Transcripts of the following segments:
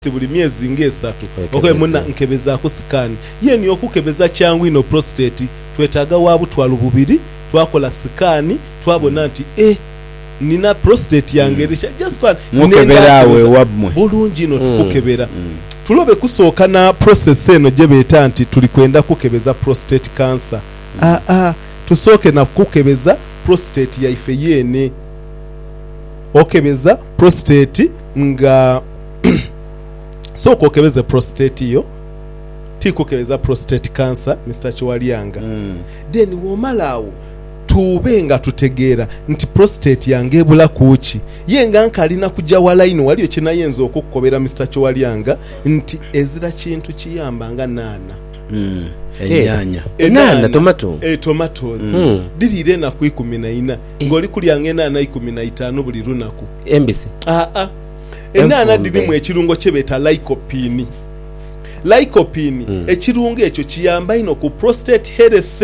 Prostate buli myezi nga esatu oba emuna nkebezaku sikaani yeeni okukebeza kyangu inho prostate twetaaga wa butwalo bubiri twakola sikaani twabona nti eeh nina prostate yange eri kya just fine Mukebera awo nendhakiriza ewabmwe. bulungi inho tukukebera tulobe kusooka na process eno gyebeeta nti tuli kwenda kukebeza prostate cancer aa tusooke na kukebeza prostate yaife yeene okebeza prostate nga Sooka okebeze prostate yo ti kukebeza prostate cancer Mister Kiwalyanga. Then womala agho tuube nga tutegeera nti prostate yange ebulaku ki? Ye nga nkali na kuja wala inho waliyo kye nayenza okukukobera Mister Kiwalyanga nti ezira kintu kiyamba nga nhanha. Enhanha. Enhanha, tomato. E tomatoes. Dhiriire enaku ikumi na ina nga oli kulya nga enhanha ikumi na itaanu buli lunaku. Embisi? Aa. Enhanha dhirimu ekirungo kye beeta lycopene. Lycopene ekirungo ekyo kiyamba inho ku prostate health.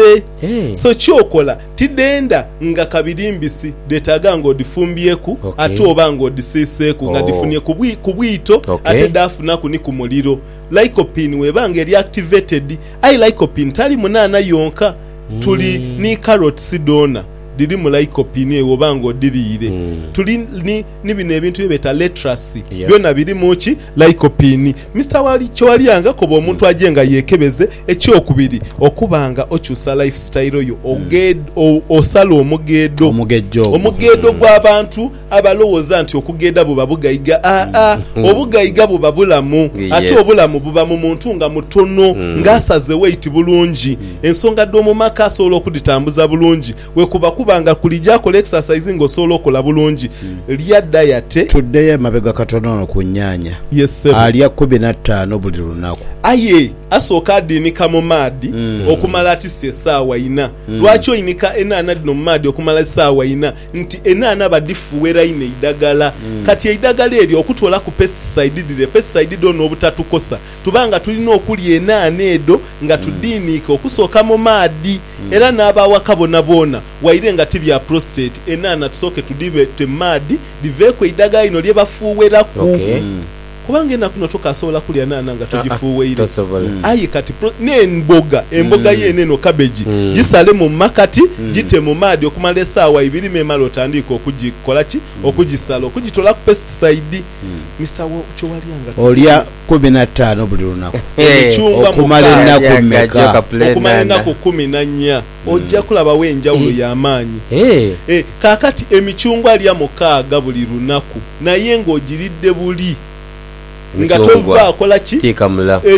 So kyokola tidhenda nga kabiri mbisi, dheetaaga ng'odhifumbyeku ate oba ng'odhisiiseeku nga dhifunye ku bwito ate dhaafunaku ni ku muliro. Lycopene w'eba nga eri activated. Aye lycopene tali mu nhanha yonka, tuli ni carrots dhoona dhirimu lycopene eyo bw'oba ng'odhiriire. Tuli ni. Ni bino ebintu bye beta letrasi byona birimu ki? Lycopene. Mister Wali, kye walyanga koba omuntu aje nga yekebeze. Ekyokubiri, okuba nga okyusa life style yo, osala omugheedo. Omugheedo gwa bantu abalowooza nti okugheeda buba bughaiga. Aa, obughaiga buba bulamu. Ate obulamu buba mu muntu nga mutono, nga asaze weight bulungi, ensonga dh'omu maka asobola okudhitambuza bulungi, Bwe kuba kuba nga kulija kola exercise nga osobola okola bulungi, lya diet. Tuddeyo emabega katono ono ku nyaanya. Yes ssebo. Alya kkumi na ttaano buli lunaku. Aye asooka adhinika mu maadhi okumala atist esaawa ina. Lwaki oinika enhaanha dhino mu maadhi okumala esaawa ina? Nti enhaanha badhifuuwera inho eidhagala. Kati eidhagala eryo okutwolaku pesticide dhire, pesticide dhona obutatukosa, tuba nga tulina okulya enhaanha edho nga tudhiiniike okusooka mu maadhi. Era n'ab'awaka boonaboona waire nga ti bya prostate, enhaanha tusooke tudhibete mu maadhi dhiveeku eidhagala lino lye bafuuweraku. Kubanga enaku ino tokaasobola kulya nhaanha nga togifuuweire. Aye kati n'emboga, emboga yeene eno kabeji, gisalemu mu makati, gite mu maadhi okumala esaawa ibiri me male otandiike okugikola ki? Okugisala, okugitoolaku pesticide. Mister Wo, kye walyanga todhirya. kumi na taano buli lunaku okumala ennaku meka? Kumi na nnya. Oja kulabawo enjawulo ya maanyi. Kaakati, emicungwa lya mukaaga buli lunaku, naye nga ogiridde buli, nga tova kola ki?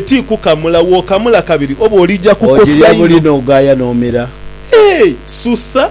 Ti kukamula. Wokamula kabiri oba olija kukosa inho. Ogirya buli n'ogaaya n'omira. Susa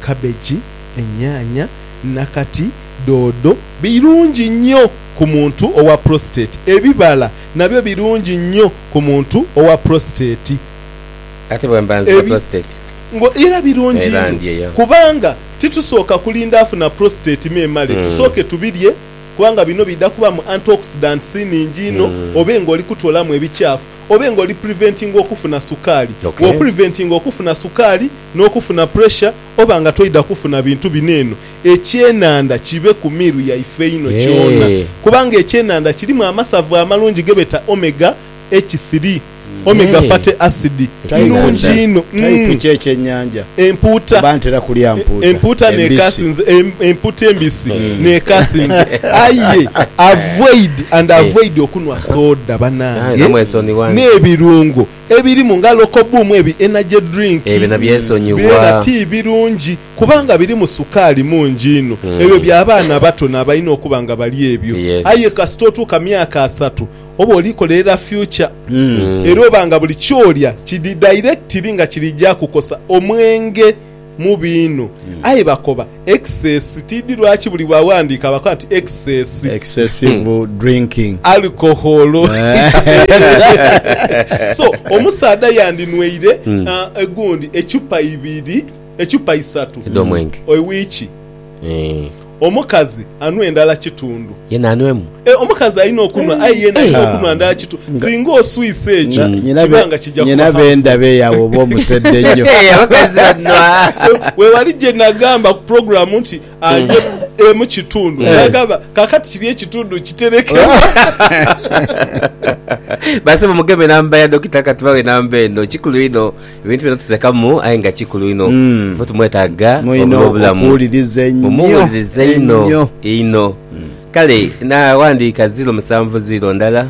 kabbegi, enyaanya, nakati, doodo birungi nnyo ku muntu owa prostate. Ebibala nabyo birungi nnyo ku muntu owa prostate. Ate bwemba nzira prostate? Ngo era birungi inho kubanga titusooka kulinda afuna prostate me male tusooke tubirye kubanga bino bidha kubamu antioxidants nhingi inho obe nga oli kutoolamu ebikyafu obe nga olipriventinga okufuna sukaali. Bw'opriventinga okufuna sukaali n'okufuna puresha oba nga toidha kufuna bintu bino eno, ekyenhandha kibe ku miiru yaife einho kyona kubanga ekyenhandha kirimu amasavu amalungi ge beeta Omega H three, Omega fatty acid, nungi inho. Taipu ki ekyennyanja Empuuta. Mba ntera kulya mpuuta. Empuuta embisi. Empuuta embisi n'ekasinze. Aye avoid and avoid okunwa soda banange n'ebirungo ebirimu nga local boom ebi energy drink byona ti birungi kubanga birimu sukaali mungi inho. Ebyo bya baana abato n'abalina okuba nga balya ebyo. Aye kasita otuuka myaka asatu. Oba oli kolerera future era oba nga buli ky'olya kidhi directly nga kiri ja kukosa. Omwenge mubi inho aye bakoba excess, tidhi lwaki buli bw'aghandiika bakoba nti excess. Excessive drinking. Alcohol. So, omusaadha yandinweire egundi ecupa ibiri, ecupa isatu. Edh'omwenge. Ewiiki. Eeh. Omukazi anwe ndala kitundu. Yena anwemu. E, omukazi alina okunwa, aye yena alina okunwa ndala kitundu. Nga. Singa oswisa ekyo, Nga nyina kiba be, nga kija kuba nyina be harmful. ndabe yagho oba omusedde nnyo. Eeh, abakazi banwa. We, wewali gye nagamba ku program nti anywe emu kitundu, Eh. nagamba kakati kiri ekitundu kiterekemu. Basebo mugeme number ya Dokita Kati baghe number eno kikulu inho. Ebintu bino tusekamu aye nga kikulu inho mm. ffe tumwetaaga obula obulamu mumuwulirize inho inho mm. kale nawandiika ziro musanvu ziro ndala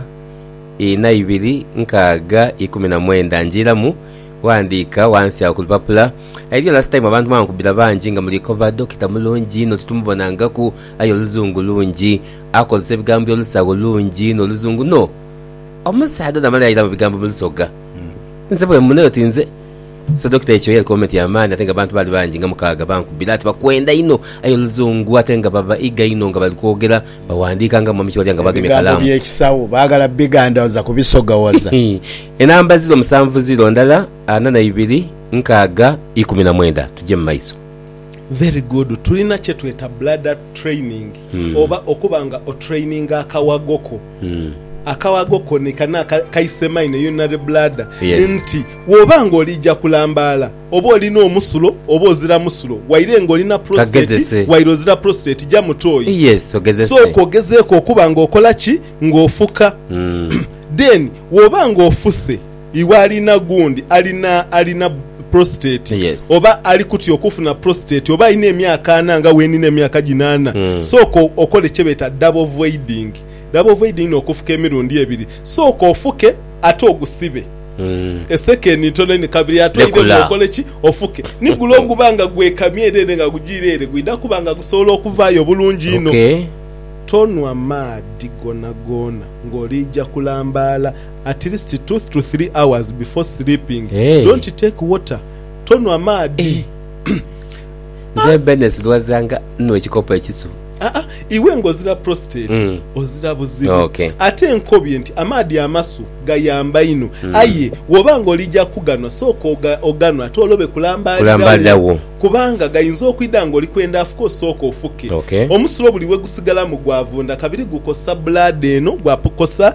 ina ibiri nkaaga ikumi na mwenda njiiramu wandiika wansi awo ku lupapula eriyo last time abantu mwankubira bangi nga mulikoba dokita mulungi inho titumubonangaku aye oluzungu lungi akozesa ebigambo by'olusawo lungi inho oluzungu no omusaadha namala yaira mu bigambo mulusoga Nze bwe mune oti nze. So Dokita ekyo yali komenti ya maani ate nga abantu baali bangi nga mukaaga bankubira ati bakwenda inho aye oluzungu ate nga babaiga inho nga bali kwogera baghandiika nga Mwami Kiwalya nga bagemye Ebigambo kalaamu. by'ekisawo baagala bigandhaza kubisogawaza. Enamba ziro musanvu ziro ndala ana na ibiri nkaaga ikumi na mwenda. Tuje mu maiso. Very good tulina kyetweta bladder training oba okuba nga otraininga akawago ko. Akawago ko ni kano akaise maino urinary bladder nti woba nga olija kulambaala oba olina omusulo oba ozira musulo waire nga olina prostate waire ozira prostate ja mutoyi sooka ogezeeko okuba nga okola ki nga ofuka then woba nga ofuse Iwe alina gundi alina alina prostate Yes. oba ali kutya okufuna prostate oba alina emyaka ana nga wenina emyaka gino ana sooka o- okole kyebeta double voiding. Double voiding nokufuka emirundi ebiri. Sooka ofuke ate ogusibe esekeni ntono inho kabiri ate oidemu Dhekula. okole ki ofuke. Ni gule oguba nga gwekamye ere ere nga gujiira ere gwidha kuba nga gusobola okuvaayo bulungi inho. Okay. Tonwa maadhi gonagoona ng'oliija kulambaala. at least two to three hours before sleeping, don't take water tonwa maadhi Nze mba nesidwaza nga nwa ekikopo ekitsu. Aa iwe nga ozira prostate ozira buzibu ate nkobye nti amaadhi amasu gayamba inho aye woba nga olija kuganwa sooka oganwe ate olobe kulambaalira wo kubanga gayinza okwidha nga oli kwenda afuka osooke ofuke. Omusulo buli wegusigalamu gwavunda kabiri gukosa blood eno gwakosa.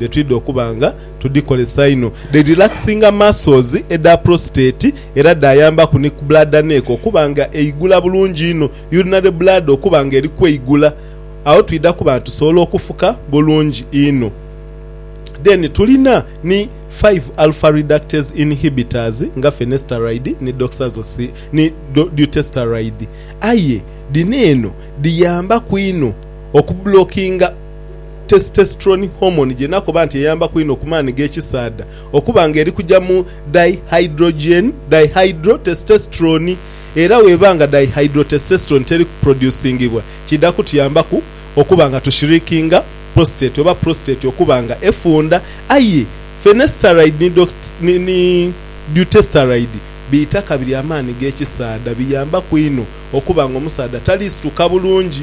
dhe twidha okuba nga tudhikozesa inho. Dhi relaxinga muscles edha prostate era dhaayambaku ni ku bladder neck okuba nga eigula bulungi inho, urinary bladder okuba nga eri kweigula. Agho twidha kuba nga tusobola okufuka bulungi inho. Then tulina ni five alpha reductase inhibitors nga fenesteride ni doxazosi ni dutesteroid. Aye dhino eno dhiyambaku inho oku blockinga. testosterone hormone gye nakoba nti eyambaku inho ku maani g'ekisaadha okuba nga eri kuja mu dihydrogen, dihydrotestosterone, era weba nga dihydrotestosterone teri ku producingibwa kidha kutuyambaku okuba nga tu shrinkinga prostate oba prostate okuba nga efunda aye fenesteride ni dutesteryde biita kabiri amaani g'ekisaadha biyambaku inho okuba nga omusaadha talisituka bulungi.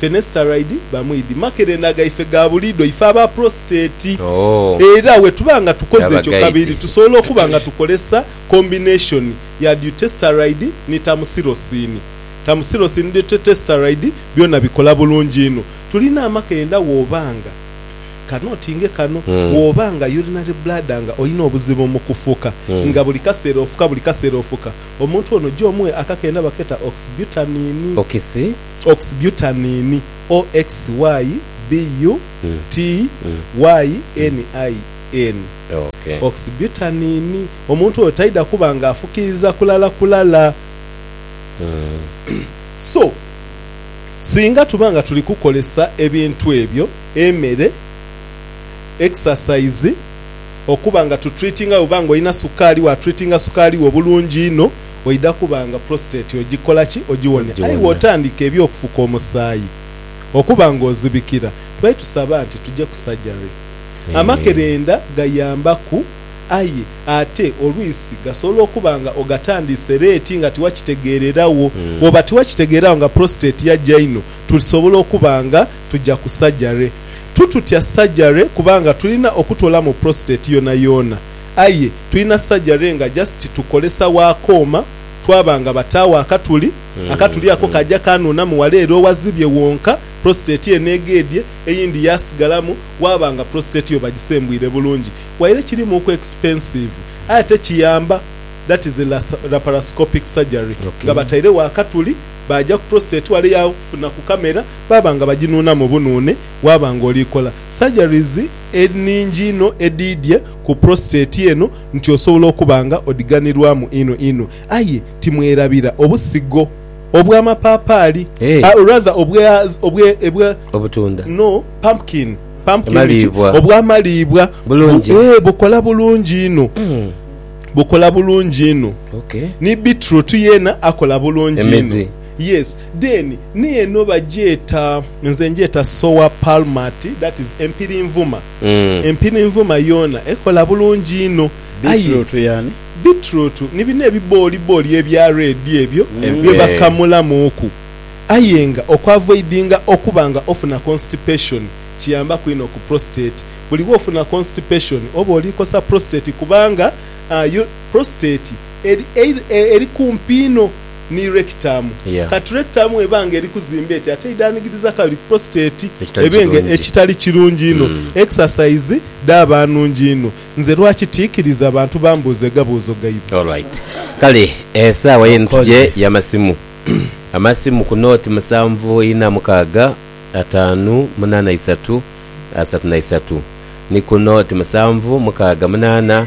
Fenesitaraidi bamwidhi makerenda gaife ga buliidho ife aba prositeti. Era bwe tuba nga tukoze ekyo kabiri, tusobola okuba nga tukozesa kombineshoni ya dutesitaraidi ni tamusilosini. Tamusilosini ni dutesitaraidi byona bikola bulungi inho. Tulina amakerenda bw'oba nga, ka nooti nge kano, bw'oba nga urinary bladder nga olina obuzibu mu kufuka, nga buli kaseera ofuka buli kaseera ofuka, omuntu ono ja omughe akakerenda bakeeta oxybutanini. Oxbyutanini, OXYBUTYNIN. Ok. Oxbyutanini. Omuntu oyo taidha kuba nga afukiriza kulala kulala. So, singa tuba nga tuli kukozesa ebintu ebyo, emere, exercise, okuba nga tutreatinga, bwoba nga olina sukaali, watreatinga sukaali wo bulungi inho, Oidha kuba nga prostate ogikola ki? Ogiwonia. Aye bw'otandika eby'okufuka omusaayi okuba nga ozibikira, twali tusaba nti tuje ku surgery. Amakerenda gayambaku aye ate olwisi gasobola okuba nga ogatandiise leeti nga tiwakitegeereragho. Bw'oba tiwakitegeereragho nga prostate yaja inho, tusobola okuba nga tuja ku surgery. Titutya surgery kubanga tulina okutoolamu prostate yoonayoona Aye tulina saja re nga just tukolesa wa kooma twaba nga bataagho akatuli, akatuli ako kaja kanuunamu wale ere owazibye wonka, prostate eno egheedhie, eyindi yaasigalamu, waaba nga prostate yo bagisembwire bulungi. Waire kirimuuku expensive aye ate kiyamba. That is laparascopic surgery nga batairegho akatuli, baaja ku prostate wale yaafuna ku camera baaba nga baginuunamu bunuune waaba nga oli kola surgeries. enhingi inho edhiidhie ku prostate eno nti osobola okuba nga odhighanirwamu inho inho. Aye timwerabira obusigo obw'amapaapaali, or rather obwa, Obutunda. no, pumpkin, pumpkin ki? Emaliibwa. Obw'amaliibwa. Bulungi. Eeh, bukola bulungi inho. Bukola bulungi inho. Okay. Ni beetroot yeena akola bulungi inho. Emizi. Yes. Then ni eno bagyeta, nze ngyeta sowa palmat, that is empirinvuma. Empirinvuma yoona ekola bulungi inho. Aye Beetroot yaani? beetroot ni bino ebiboolibooli ebya red ebyo bye bakamulamuuku. Aye nga okwavoidinga okuba nga ofuna constipation kiyambaku inho ku prostate. Buli wofuna constipation oba oli kosa prostate kubanga yo prostate eri kumpi inho ni rectum. Yeah. Kati rectum eba nga eri kuzimba eti ate eidhanhigiriza kali ku prostate Ekitali ebe nga kirungi. ekitali kirungi inho. Mm. Exercise dhaaba nnhungi inho. Nze lwaki tiikiriza bantu bambuuze gabuuzo gaibwe? Alright. Kale esaawa yenu tuje Okoze. ya masimu. Amasimu ku nought musanvu ina mukaaga ataanu munaana isatu asatu na isatu ni ku nought musanvu mukaaga munaana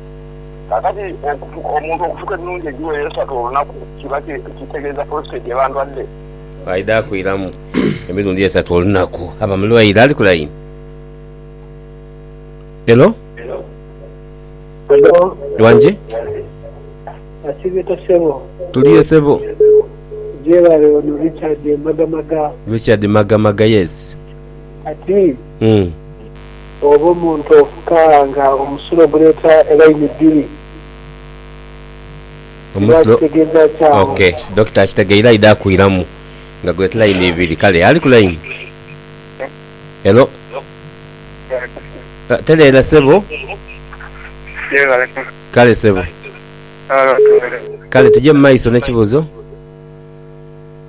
Kaakati, okufuka omuntu, okufuka emirundi egiwera esatu olunaku, kiba kitegeeza prostate eba ndwadde? Bw'aidha akwiramu emirundi esatu olunaku, aba mulwaire. Ali ku line. Hello? Hello? Wangi? Asibito ssebo. Tuliyo ssebo. Gyebale, ono Richard e Magamaga. Richard Magamaga, yes. Kati. Hmm. Oba omuntu ofuka nga omusulo guleeta elayini bbiri kiba Omusulo kitegeeza ki agho? ok Dokita akitegeire aidha akwiramu nga guleeta layini ibiri kale ali ku layini Hello Ah, tereera sebo kale sebo kale tuje mu maiso ne kibuzo.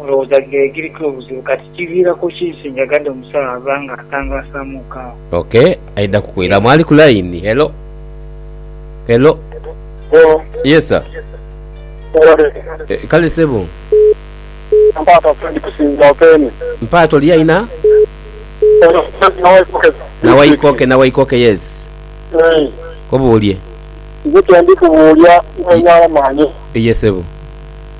Olowooza ge giriku obuzibu? Kati kiviiraku ki nsinjagade omusawo aba nga atangasamuuku agho? Ok aidha kukwiramu. Ali ku line. Hello hello yes sir kale sebo mpaata oli aina nawaikoke nawaikoke yes kobuulye ye sebo.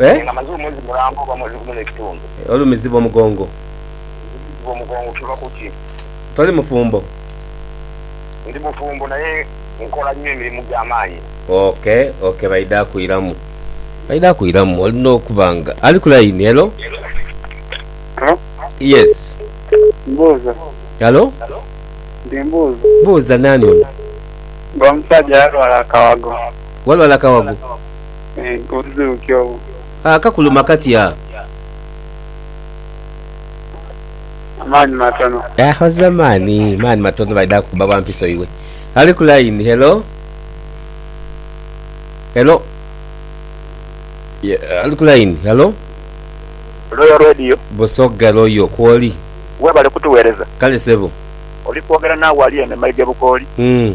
Eeh. Nga maze omwezi mulamba oba mwezi gumu n'ekitundu. Olumizibwa omugongo. Olumizibwa omugongo kiva ku ki? Toli mufumbo? Ndi mufumbo naye nkola nnyo emirimu gy'amaanyi. Ok, ok, baidha akwiramu. Baidha akwiramu, olina okuba nga. Ali ku layini, hello? Hello? Yes. Mbuuza. Hello? Nti mbuuza. Buuza, naani ono? Ndi omusaja ayalwala akawago. Walwala akawago? Mpozi mutya wo? Ah, kakuluma katya? Amaani matono. Ah, oze amaani, maani matono baidha kukubba bwa mpiso iwe. Ali ku line, hello? Hello? Yeah, ali ku line, hello? Royal Radio. Busoga Royal, kwoli? Webale kutuwereza. Kale sebo. Oli kwogera naawe ali eno e Maige Bukooli. Uhmm.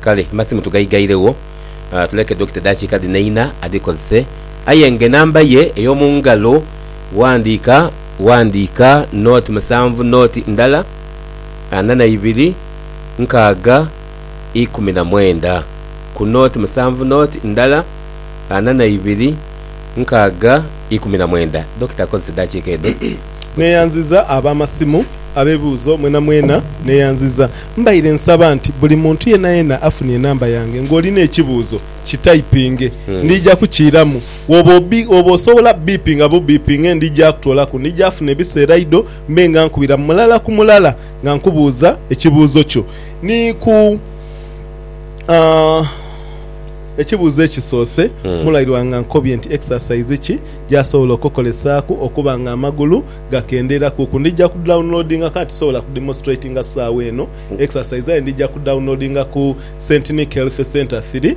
Kale amasimu tugaighairegho, tuleke Dokita edaakiika dhino ina adhikozese. Aye nga enamba ye ey'omu ngalo ghandiika, ghandiika naught musanvu naught ndala ana na ibiri nkaaga ikumi na mwenda ku naught musanvu naught ndala ana na ibiri nkaaga ikumi na mwenda. Dokita kozesa edaakiika edho. Neyanziza ab'amasimu ab'ebibuzo mwena mwena neyanziza. Mbaire nsaba nti buli muntu yena yena afunye enamba yange nga olina ekibuzo ki typinge ndija kukiiramu woba obi woba osobola beepinga bu beepinge ndija kutolaku ndija funa ebiseera idho mbe nga nkubira mulala ku mulala nga nkubuuza ekibuzo kyo ni ku aah Ekibuzo ekisoose mulairwa nga nkobye nti exercise ki Gyasobola okukokolesaaku okuba nga amagulu gakendeera ku ku. Ndija ku downloadinga ku aye tisobola ku demonstratinga saawa eno exercise aye ndija ku downloadinga ku Saint Nick Health Centre thiri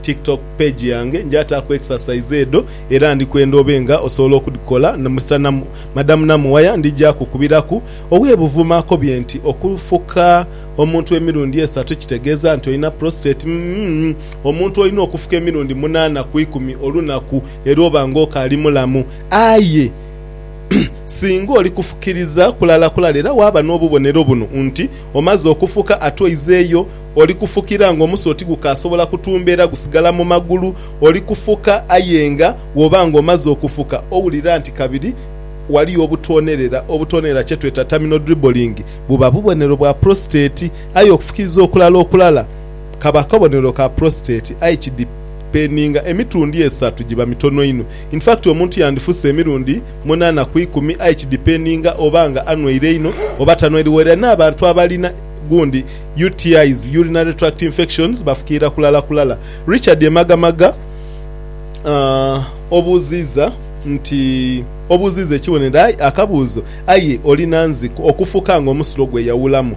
tiktok page yange nja taaku exercise edho era ndi kwenda obe nga osobola okudhikola na Mister Namu Madam Namuwaya ndija kukubiraku owe Buvuma akobye nti okufuka omuntu emirundi esatu kitegeeza nti olina prostate umm omuntu olina okufuka emirundi munaana ku ikumi olunaku Era oba ng'okaali mulamu. Aye singa oli kufukiriza kulalakulala era waaba n'obubonero buno nti omaze okufuka ate oizeeyo, oli kufukira ng'omusu oti gukaasobola kutumba era gusigala mu magulu. Oli kufuka aye nga wooba ng'omaze okufuka owulira nti kabiri waliyo obutoonerera. Obutoonerera kye tweta terminal dribbling buba bubonero bwa prostate. Aye okufukiriza okulalakulala kaba kabonero ka prostate aye ki. peninga emitundi esatu giba mitono inho. In fact omuntu yandifuse emirundi munana ku ikumi aye kidipeninga oba nga anwaire inho oba tanwaire were n'abantu abalina gundi UTIs, urinary tract infections, bafukiira kulala kulala. Richard e Magamaga obuuziiza nti obuuziiza ekibonereaye akabuuzo aye olina nziku okufuka nga omusulo gweyawulamu?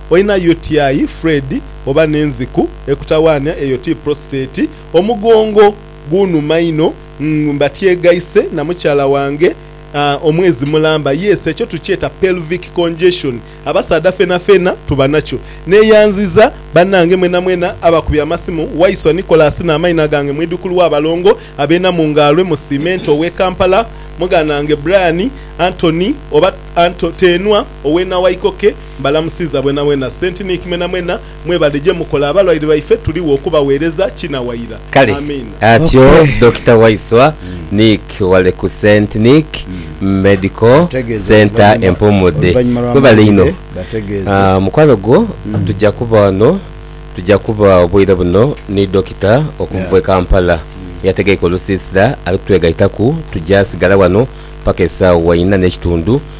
Olina UTI, Fred, oba n'enziku ekutawaania, eyo ti prostate. Omugongo gunuma inho. Mbatyegaise na mukyala wange omwezi mulamba. Yes, ekyo tukyeta pelvic congestion. Abasaadha fenafena tuba nakyo. Neyanziza banange mwenamwena abakubye amasimu, Waiswa Nicholas n'amaino agange mwidhukulu w'abalongo ab'e Namungaalwe mu Cement ow'e Kampala, mughanange Brian, Anthony oba Anto Teenwa ow'e Nawaikoke, Mbalamusiza bwenabwena Saint Nick mwenamwena mwebale gyemukola abalwaire baife tuligho okubawereza kinawaira. Kale Amiina. atyo Dokita Waiswa Nick Wale ku Saint Nick Medical Centre e Mpumudde. Webale inho mukwano gwo tuja kuba wano tuja kuba obwire buno ni Dokita okuva e Kampala eyategeike olusiisira ali kutwegaitaku tuja sigala wano paka esaawa ina nekitundu.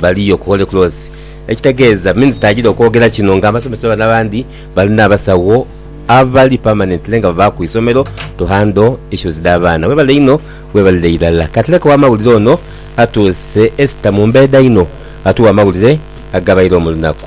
Baliyo ku Holy Cross ekitegeeza minisita aidhira okwogera kino nga abasomesa bano abandi bali n'abasawo abali permanently nga bava ku isomero to handle issues dh'abaana. Webale inho webalire irala. Katereka w'amawulire ono atuuse Esther Mumbeeda inho atuwe amawulire agabaire omu lunaku.